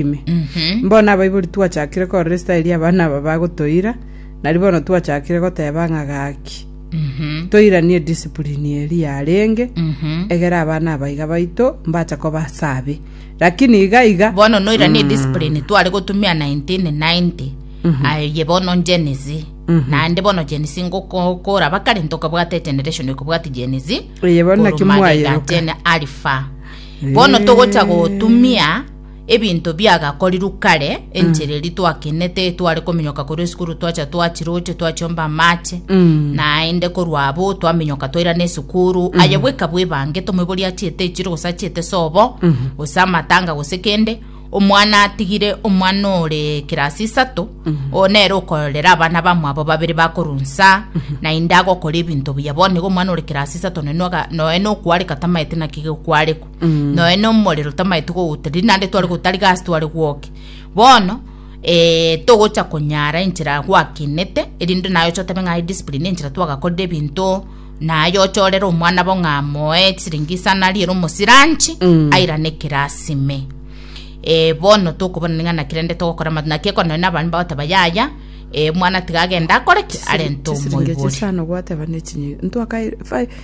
ime. Bono abaibori twachakire korora esitayeri y'abana aba bagotoira, nari bono twachakire goteba ng'a gaki, toiranie discipline eri yarenge, egera abana aba iga baito mbacha koba ase abe. Lakini iga iga bono noiranie discipline tware gotumia 1990 aye bono Gen Z naende bono Gen Z ngokora bakare ntokabwate egeneration ekobwati Gen Z Eye bono naki korwa mwayeroka. Magega Gen Alpha bono togocha gotumia ebinto biagakorirwe kare, enchera eri twakenete, tware kominyoka korwa esukuru twacha twachiroche, twachomba amache, Mm. naende korwa abo twaminyoka twairana esukuru, aye bweka bwebange tomoibori achiete echiro gose achiete sobo, gose amatanga gose kende, omwana atigire omwana ore kirasi isato, oo nere okororera abana bamwabo babere bakorunsa, naende agokora ebinto buya, bono iga omwana ore kirasi isato naende oga- noe nokwareka tamaete naki gekwarekwa. noe nomorero tamaete kogoteria naende tware gotariga ase tware gwoke bono eh, togocha konyara enchera gwakinete erinde naye oche otabe ng'a discipline enchera twagakorire ebinto naye oche orere omwana bo ng'a moe chisiringi isano ariere omosiranchi airane ekerasi ime eh, bono tokobona ning'a naki rende togokora amato naki ekero nonye na abana bagoteba yaya eh, omwana tiga agende akore ki arente chisiringi echi omoibori isano gwateba ne chinyi ntwaka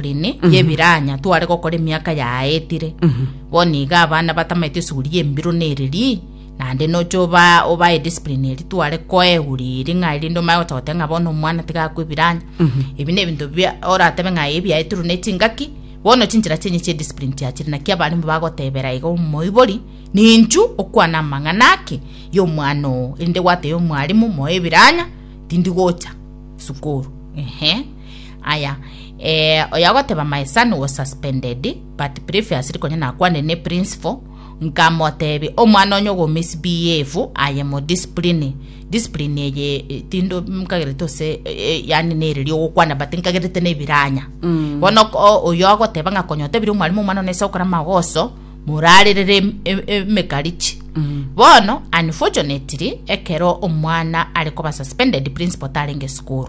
Line y'ebiraanya tware gokora emiaka yaetire, bo nigo abana batamaete esuguri y'embiro nereri, naende noche oba obae discipline eri tware koa eguri eri ng'a erinde omanye gocha goteba ng'a bono omwana tiga akwe ebiraanya. Ebi na ebinto bia oratebe ng'a ebi biaetirwe ne chingaki, bono chinchera chiaye chia discipline chiachire naki abarimbu bagotebera iga omoibori, ninchu okwana amang'ana ake y'omwana oo, erinde gwatebia omwarimu moe ebiraanya tindi gocha sukuru. Ehe. Aya, eh, oyo agoteba my son was suspended but previously konya nakwanire ne principal nkamotebia omwana onye ogomisbehave aye mo discipline discipline eye eh, tindo nkagerete ose eh, yani nere riogokwana but nkagerete nebiranya mm. bono ko- oyo agoteba ng'a konya otebire omwalimu omwana one ase gokora magoso morarerere em- em- emekarichi mm. bono unfortunately ekero omwana are koba suspended principal tarenge sukuru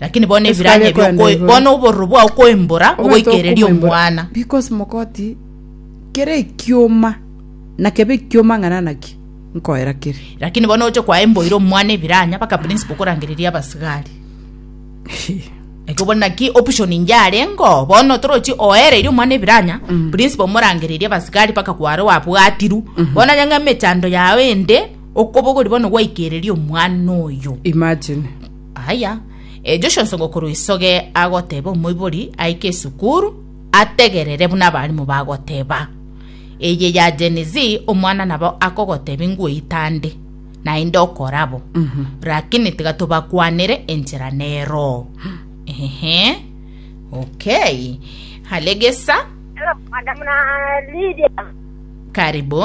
Lakini bono Yesu ebiranya kagekora ebio okoe- naigoro. bono obororo bwao koembora Ogoeta ogoikereria okomwembora. omwana because mogoti kere ekioma na kebe ekioma ng'a nanaki nkoera kere lakini bono oche kwaemboire omwana ebiranya baka principal okorangereria abasigari ekio bono naki option inche arengo bono torochi oereire omwana ebiranya Mm. principal omorangereria abasigari baka kware wabwatiru bono onye ng'a emechando yago ende okoba ogori bono gwaikereria omwana oyo imagine Aya, Joshua nsongo korwa isoge agoteba omoibori aike esukuru, ategerere buna abarimu bagoteba. Eye ya Gen Z omwana nabo akogoteba inguo itande, naende okorabo. Rakini tiga tobakwanere enchera nero. Ehe. Okay. Hale gesa. Hello, Madam na Lydia. Karibu.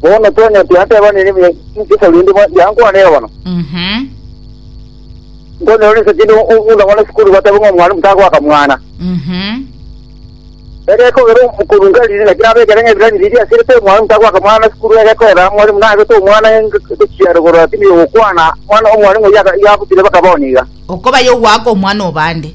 Bono Tony ati, Anteba nini buya inchesa rende bwa- yankwane erogono. Mhm. Ntonyora rinse kinde omunda mwana esukuru bateba ng'a omwalimu tagoaka mwana. Mhm. Egekogera omokoro nkariri naki nabekere ng'a ebirani biria asirete omwalimu tagoaka mwana na esukuru egekorera omwalimu nabete omwana echiaro korora tindi ogokwana mwana omwalimu oyio aka- iga abutire bakaba one iga. Okobaya ogoaka omwana obande.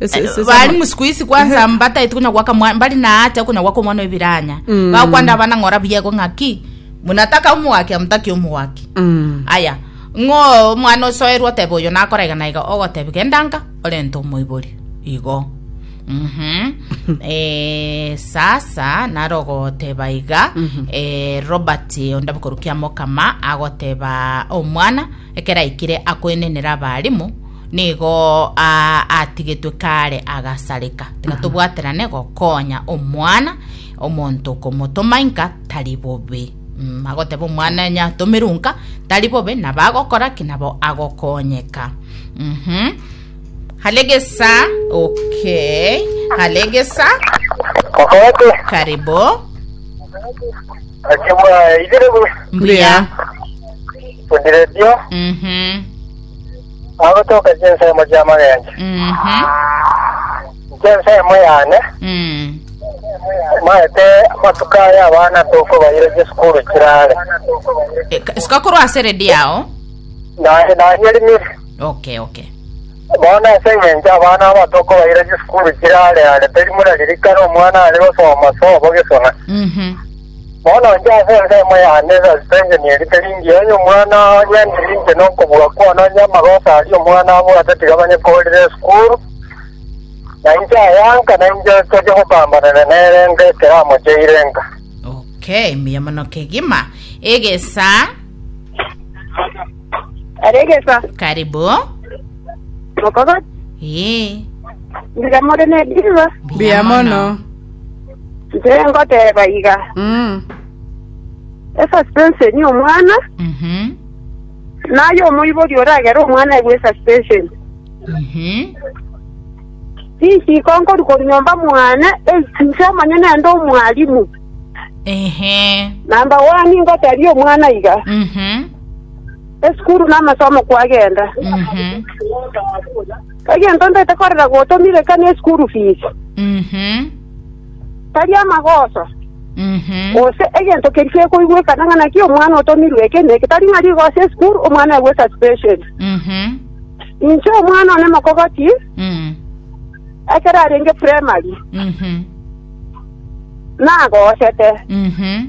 Ese- ese- ese- bari musikuisi isi kwanza mbataiti kunya gwaka mwa- mbari na haja yo kunya gwaka omwana webiranya Mm. bakwanda abana ng'ora buyego ng'aki munataka omogaki amutaki omogaki Mm. aya ng'o omwana osoerwa otebe oyo nakora iga na iga ogoteba gendanga orente omoibori igo Mhm. Eh, sasa naro ogoteba iga eh, robert ondabe korukia mokama agoteba omwana Ekero aikire akoenenera abaalimu, nigo atigetwe kare agasareka. Tiga tobwaterane gokonya omwana omonto komotoma inka tari bobe. Mm, agoteba omwana onye atomerwe nka tari bobe nabo agokora ki nabo agokonyeka. Mhm. Halegesa, okay. Halegesa, Okorete. karibu. Akibwa igere bu. Mbuya. Odirebio, Mhm. agotoka chinsemo chi'amagencho. Mhm. Inche ensemo yane, Mm. maete amatuko aya abana tokobaira chisukuru chirare. E, ka- Sikakorwa ase redi yao. Naye nanyerimire. Okay, okay. Bono ase eng'encho abana aba tokobaira chisukuru chirare are teri muna ririkana omwana are gosoma sobo gesona. Mhm. Bono inche ase ensemo yane esasito inche nierite ringiya onye omwana onye ndiri inche nokobua kwane onye amagoso aria omwana abwate tiga banye korire esukuru, na inche ayanka na inche toche gopambanana nere enka ekero amocheire enka. Okay, mbuya mono kegima. Egesa, Are egesa. karibu. Mokogoti. Ee, Ndiga more ne diva. Mbuya mono. Nche ngoteba iga, Mm. esuspension omwana, Mhm. naye omoibori oragere omwana egwe esuspension. Mhm. Risiko nkoru koru nyomba mwane, ei, nche omanye nende omwalimu. Ehe. Namba wani ngoteria omwana iga, Mhm. esukuru namasomo kwagenda. Mhm. Egento ndete korera gotomia reka ne school fees, Mhm. tari amagoso, Mhm. gose egento keria kekoigwekana ng'a naki omwana otomirwe eke na eke, tari ng'a rigoso ya school omwana aigwe suspension. Mhm. Inche omwana one mokogoti Mm. ekero arenge primary Mhm. nagosete, Mhm.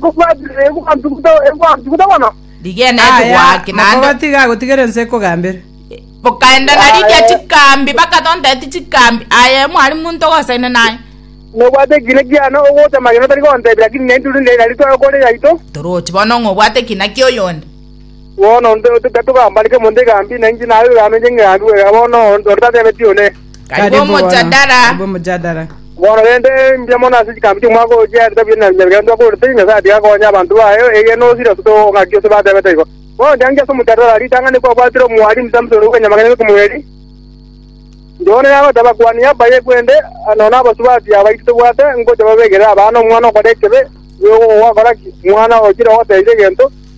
Gokwanchire egwanchugute, egwanchugute mono. Rigena Aya, ebigoaki naende makoba tiga agotigera ense ekogambera. bokaenda na riria Aye. chikambi bakatonteti chikambi aye mwari monto gosaine naye Nobwate ekina kiane ogocha magena otari gontebia, lakini naintwe rinde nari tore kore yaito. torochi bono ng'a obwate ekina kia oyonde Bono togambaneke omonto egambi, na inche naye oyogambe inche ng'egambi bweka, bono onde tatebetie one. Karibu omojadara. Bono rende mbuya mono ase chikambi chi'omwaka oyo chia etabu y'Enabii Yeremia ntwakorete, Nyasae atiga akonya abanto baye, erio nonsi rirosote gokong'aki ase batebete igo. Bono ndianchia ase omojadara, ritang'ani kwabwatire omwari Msamson ore bw'enyamagena ime Kemueli, Yohana yagoteba, Abakuani aba y'ekwende, nonya abasubati abaito tobwate ngocha babegerere abana omwana okore ekibe, bwegokogoa kora ki, omwana ochire ogotebia egento?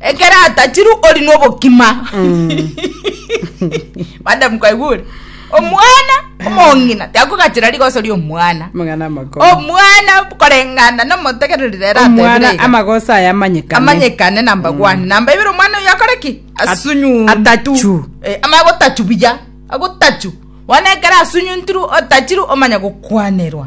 ekero atachiru ori nobokima madam kwaigure omwana omong'ina tiakogachera rigoso ria omwana Mang'ana amakoro. omwana korengana nomotegereri rero Omwana atebire amagoso aya amanyekane. amanyekane namba one namba ibere omwana oyo akore ki asunyuntu atachu. Eh, ama agotachu buya agotachu bono ekero asunyuntiru otachiru omanya gokwanerwa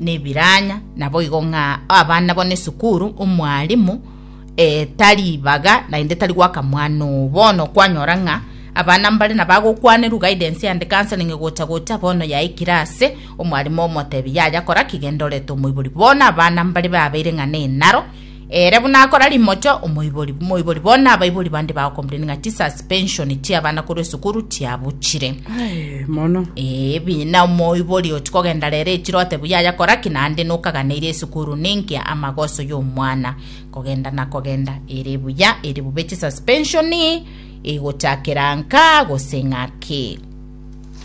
nebiranya, naboigo ng'a abana bono esukuru, omwalimu eh, tari baga naende tari gwaka mwana oo. Bono kwanyora ng'a abana mbare na bagokwanerwa guidance and counseling gocha gocha bono yaikire ase omwalimu omotebia yaya kora ki genda orete omoibori. Bono abana mbare babeire ng'a nenaro Ere buna akora rimoto, omoibori, omoibori bono abaibori bande bagokomplaini ng'a tisas pension chi'abana korwa esukuru tiabuchire. Aye, mono. Ee, bina omoibori oti kogenda rero echiro otebu yaya kora ki naende nokaganeire esukuru ninki amagoso y'omwana kogenda na kogenda ere buya ere bube chisuspensioni igochakera nka gose ng'aki